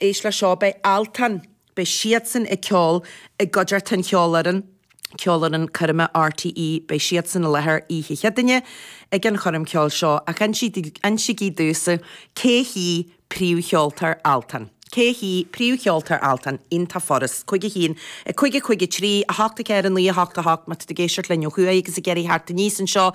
Éist le seo, beidh Altan. Beidh siadsan ag ceol i gcuideart an cheolfhoireann, Ceolfhoireann Coirme RTÉ. Beidh siadsan i láthair oíche Cheadaine ag an choirm ceoil seo ach insígí domhsa cé hí príomhcheoltóir Altan. Cé hí príomhcheoltóir Altan? An téacs, cúig a haon, a cúig, a cúig a trí, a hocht a ceathair a naoi a hocht a hocht Má tá tú ag éisteacht linn ó thuaidh agus ag iarraidh theacht aníos anseo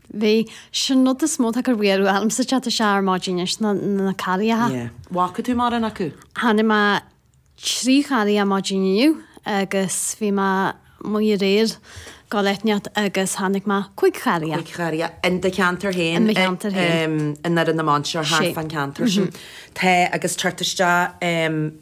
Bhí. Sin rud is mó 'tá ag mearú ormsa ag teacht isteach ar maidin anois, ná na carriacha. Yeah. Bhfaca tú mórán acu? Chonaic mé trí charria ar maidin inniu agus bhí mé amuigh aréir go deireanach agus chonaic mé cúig charria. Cúig charria in do cheantar féin? In mo cheantar féin. I nDoire na Mainséar thart fán cheantar sin. Tá agus ag teacht isteach.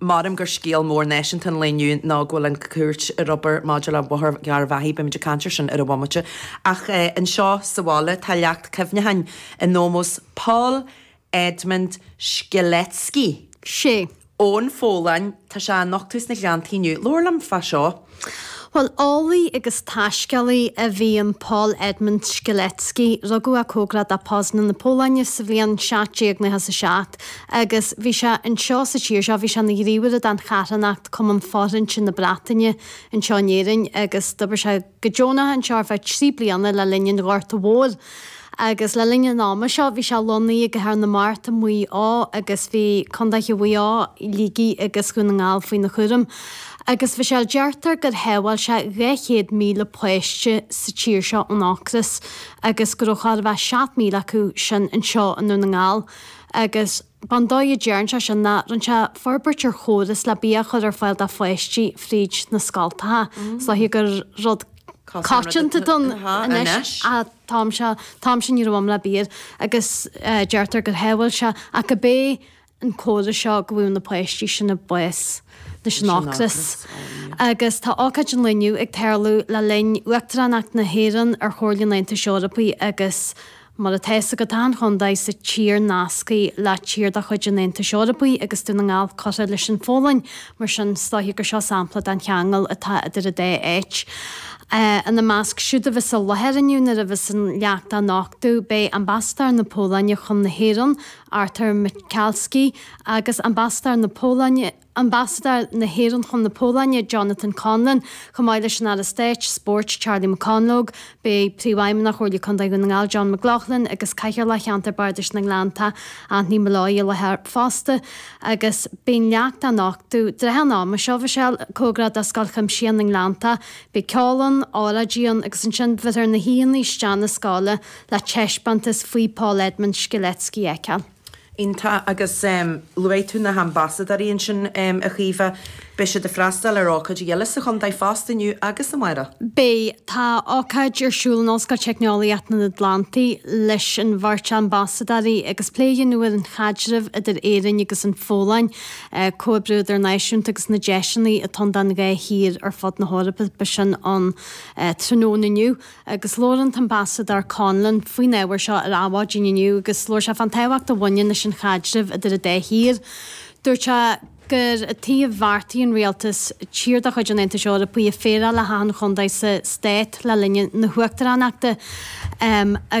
Measaim gur scéal mór náisiúnta an lae inniu ná go bhfuil an Chúirt ag obair maidir le Bóthar Gharbhachaidh, beimid ag caint ar sin ar an bhomaite, ach anseo sa bhaile tá leacht cuimhneacháin in ómós Paul Edmund Strzelecki. 'Sea. Ón Pholainn, tá sé á nochtadh sna Gleanntaí inniu. Labhair linn fá seo. Bhuel, eolaí agus taiscéalaí a bhí in Paul Edmund Strzelecki. Rugadh é cóngarach do Poznań na Polainne sa bhliain seacht déag naocha is a seacht agus bhí sé anseo sa tír seo, bhí sé ina ghníomhaire don charthanacht Cumann Fóirithinte na Breataine anseo in Éirinn agus d'oibir sé go deonach anseo ar feadh trí bliana le linn an Ghorta Mhóir. agus le linn an ama seo bhí sé lonnaithe i gCathair na Mart i Maigh Eo agus bhí contaetha Mhaigh Eo, Shligigh agus Dhún na nGall faoina chúram. Agus bhí sé, deirtear gur shábháil sé 200,000 páiste sa tír seo ón ocras agus go raibh thart fá 7,000 acu sin anseo i nDún na nGall agus, An dóigh a dtearn sé sin ná rinne sé forbairt ar chóras le bia a chur ar fáil do pháistí fríd na scoltacha. Is dóiche gur rud coitianta dúinn anois ach an t-am sin ní raibh, am, le bia agus deirtear gur shábháil sé ach gurb é an córas seo go bhfaigheadh na páistí sin bás leis an ocras. Agus tá ócáid an lae inniu ag tarlú le linn Uachtaránacht na hÉireann ar Chomhairle an Aontais Eorpaigh agus Mar atá fhios agat, tá achan chontae sa tír nasctha le tír de chuid an Aontais Eorpaigh agus Dún na nGall curtha leis an Pholainn, mar sin is dóiche gur seo sampla den cheangal atá idir an dá áit. Ina measc siúd a bheas i láthair inniu nuair a bheas an leacht á nochtadh beidh Ambasadóir na Polainne chun na hÉireann, Artur Michalski, agus Ambasadóir na Polainne, Ambasadóir na hÉireann chun na Polainne, Jonathan Conlon, chomh maith leis an Aire Stáit, Spóirt, Charlie McConalogue, beidh Príomhfheidhmeannach Chomhairle Contae Dhún na nGall, John McLaughlin, agus Cathaoirleach Cheantar Bardais na nGleannta, Anthony Molloy, i láthair fosta, agus beidh an leacht á nochtadh i dtrátha an ama seo, Mhichelle, cóngarach do Scoil Chuimsitheach na nGleannta, beidh ceol ann, óráidí ann, agus ansin bhéarfar na haíonna isteach 'na scoile le taispeántas faoi Paul Edmund Strzelecki a fheiceáil. Iontach. Agus luaigh tú na hAmbasadóirí ansin, a Chaoimhe. Beidh siad ag freastáil ar ócáidí eile sa chontae fosta inniu agus amárach. Beidh. Tá ócáid ar siúl in Ollscoil Teicneolaíochta an Atlantaigh leis an bheirt Ambasadóirí agus plé a dhéanamh ar an chaidreamh idir Éirinn agus an Pholainn, comhoibriú idirnáisiúnta agus na deiseanna atá ann don dá thír ar fud na hEorpa. Beidh sin ann tráthnóna inniu. agus labhair an tAmbasadóir Conlon faoin ábhar seo ar Adhmhaidin inniu agus labhair sé fán tábhacht a bhaineann leis an chaidreamh idir an dá thír. Dúirt sé gur i dtaobh bheartaí an Rialtais tír de chuid an Aontais Eorpaigh a phéireáil le hachan chontae sa Stát le linn na hUachtaránachta agus